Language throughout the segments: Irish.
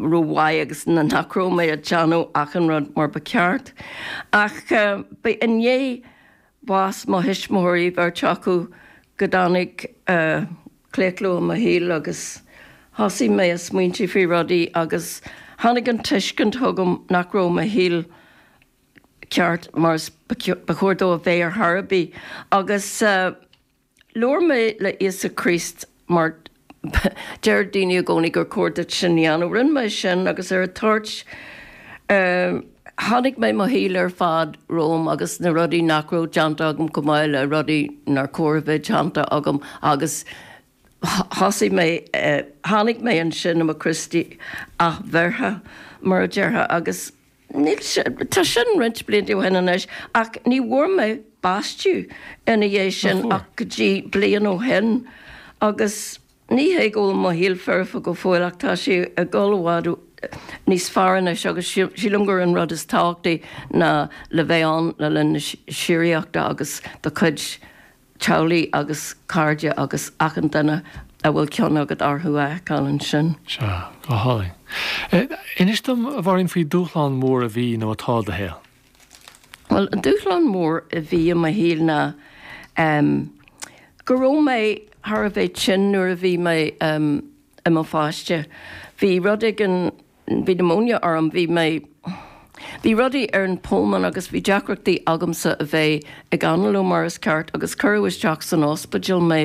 rómhaith agus nach raibh mé a' déanamh achan rud mar ba cheart. Ach b'é i ndiaidh bhás mo thuismitheoirí bheirt acu go dtáinig claochlú i mo shaol agus thosaigh mé a' smaointí faoi rudaí agus tháinig an tuiscint chugam nach raibh mo shaol ceart mar is ba chóir dó a bheith ar dhóigh ar bith agus Labhair mé le Íosa Críost mar deireadh daoine i gcónaí gur chóir duit sin a dhéanamh. Rinn mé sin agus ar an toirt tháinig mé, mo shaol ar fad romham agus na rudaí nach raibh déanta agam chomh maith le rudaí nár chóir a bheith déanta agam agus thosaigh mé, tháinig mé ansin i mo Chríostaí athbheirthe mar a déarfá agus. Níl sé, tá sin roinnt blianta ó shin anois ach ní bhfuair mé baisteadh ina dhiaidh sin Nach bhfuair? ach go dtí bliain ó shin agus ní hé go bhfuil mo shaol foirfe go fóill ach tá sé ag dul i bhfad níos fearr anois agus síl, sílim gur an rud is tábhachtaí ná le bheith ann le linn na síoraíochta agus do chuid teaghlaigh agus cairde agus achan duine a bhfuil cion agat orthu a fheiceáil ansin. Sea. Go hálainn. Inis dom, a Mháirín, faoi dúshlán mór a bhí nó atá i do shaol. Bhuel, an dúshlán mór a bhí i mo shaol ná go raibh mé thar a bheith tinn nuair a bhí mé i mo pháiste. Bhí rud éigin Bhí pneumonia orm, bhí mé. bhí rudaí ar an pholmón agus bhí deacrachtaí agamsa a bheith ag análú mar is ceart agus cuireadh isteach san ospidéal mé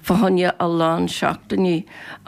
fá choinne a lán seachtainí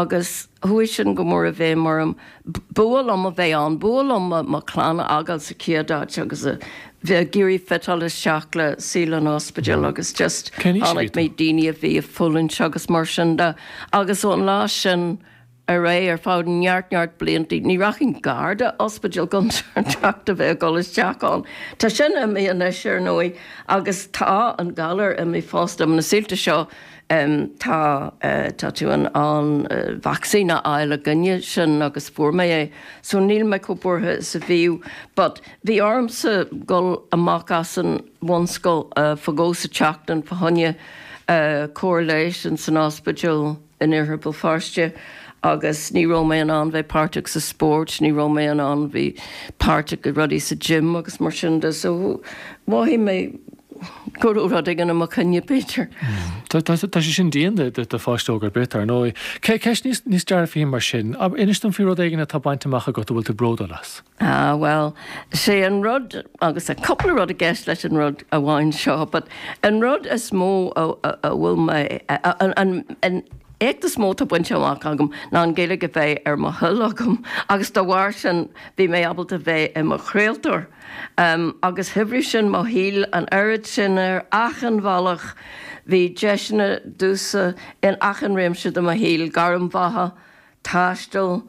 agus chuaigh sin go mór i bhfeidhm orm. B'fhuath liom a bheith ann, b'fhuath liom mo chlann a fhágáil sa chéad áit agus a bheith ag iarraidh fiteáil isteach le saol an ospidéil agus just chonaic mé, daoine a bhí ag fulaingt agus mar sin de agus ón lá sin, ar aghaidh ar feadh neart neart bliantaí. Ní rachainn gar do ospidéal gan trácht a bheith ag dul isteach ann. Tá sin imithe anois, ar ndóigh, agus tá an galar imithe fosta. Ar na saoilte seo tá tá tú in ann vacsaín a fháil i gcoinne sin agus fuair mé é so níl mé chomh buartha is a bhíodh. But bhí ormsa a dhul amach as an bhunscoil fá dhó sa tseachtain fá choinne cóir leighis in san ospidéal. in Iarthar Bhéal Feirste agus ní raibh mé in ann bheith páirteach sa spóirt, ní raibh mé in ann bheith páirteach i rudaí sa gym agus mar sin de so mhothaigh mé go raibh rud éigin i mo choinne b'fhéidir. Tá sé sin dian do pháiste óg ar bith ar ndóigh. Ceist níos dearfaí mar sin, inis dom faoi rud éigin atá bainte amach agat a bhfuil tú bródúil as. Ah, bhuel, sé an rud, agus tá cúpla rud i gceist leis an rud amháin seo, but an rud is mó a bhfuil mé, an éacht is mó atá bainte amach agam ná an Ghaeilge a bheith ar mo thoil agam agus dá bharr sin bhí mé ábalta bheith i mo chraoltóir agus shaibhrigh sin mo shaol an oiread sin ar achan bhealach. Bhí deiseanna domhsa in achan réimse de mo shaol, gairm bheatha, taisteal,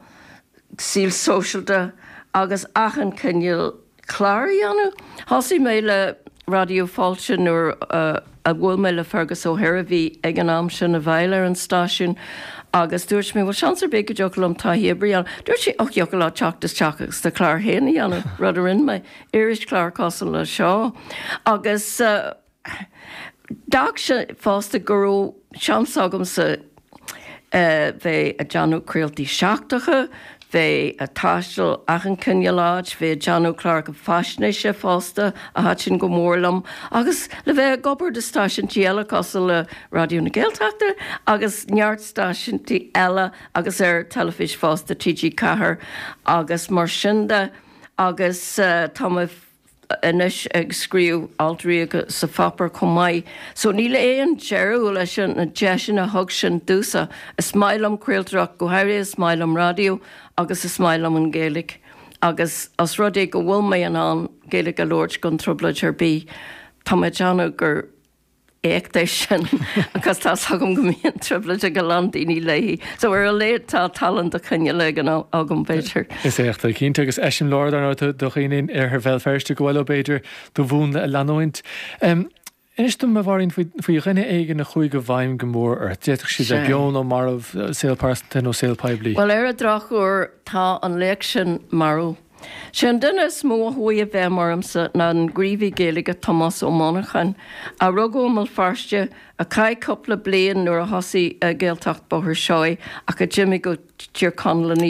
saol sóisialta agus achan chineál clár a dhéanamh. Thosaigh mé le Raidió Fáilte nuair a bhuail mé le Fergus Ó hÍr, a bhí ag an am sin i bhfeighil ar an stáisiún, agus dúirt mé bhuel seans ar bith go dtiocfadh liom taithí oibre a dhéanamh. Dúirt sé och thiocfadh leat teacht isteach agus do chlár féin a dhéanamh, rud a rinne mé, irischlár cosúil le seo, agus. D'fhág sé fosta go raibh seans agamsa bheith ag déanamh craoltaí seachtracha, bheith ag taisteal achan chineál áit, bheith ag déanamh cláracha faisnéise fosta, a thaitin go mór liom, agus le bheith ag obair do stáisiúintí eile cosúil le Raidió na Gaeltachta agus neart stáisiúintí eile agus ar teilifís fosta, TG4 agus mar sin de, agus tá mé. anois ag scríobh alt rialta sa pháipéar chomh maith, so níl aon deireadh leis na deiseanna a thug sin domhsa. Is maith liom craoltóireacht, go háirithe is maith liom raidió agus is maith liom an Ghaeilge agus os rud é go bhfuil mé in ann Gaeilge a labhairt gan trioblóid ar bith, tá mé ag déanamh gur. éacht é sin agus tá 's agam go mbíonn trioblóid ag a lán daoine léi. So ar a laghad tá tallann de chineál éigin agam b'fhéidir. Is éacht é cinnte agus eiseamláir dar ndóigh do dhaoine in iarthar Bhéal Feirste gur féidir leo b'fhéidir do mhúnla a leanúint. Inis domh, a Mháirín, faoi dhuine éigin a chuaigh i bhfeidhm go mór ort. D'fhéadfadh siad bheith beo nó marbh, saol pearsanta nó saol poiblí. Bhuel, ar an drochuair tá an laoch sin marbh. Sé an duine is mó a chuaigh i bhfeidhm ormsa ná an gníomhaí Gaeilge Tomás Ó Monacháin, a rugadh i mBéal Feirste, a chaith cúpla bliain nuair a thosaigh Gaeltacht Bhóthar Seoighe ach a d'imigh go Tír Chonaill ina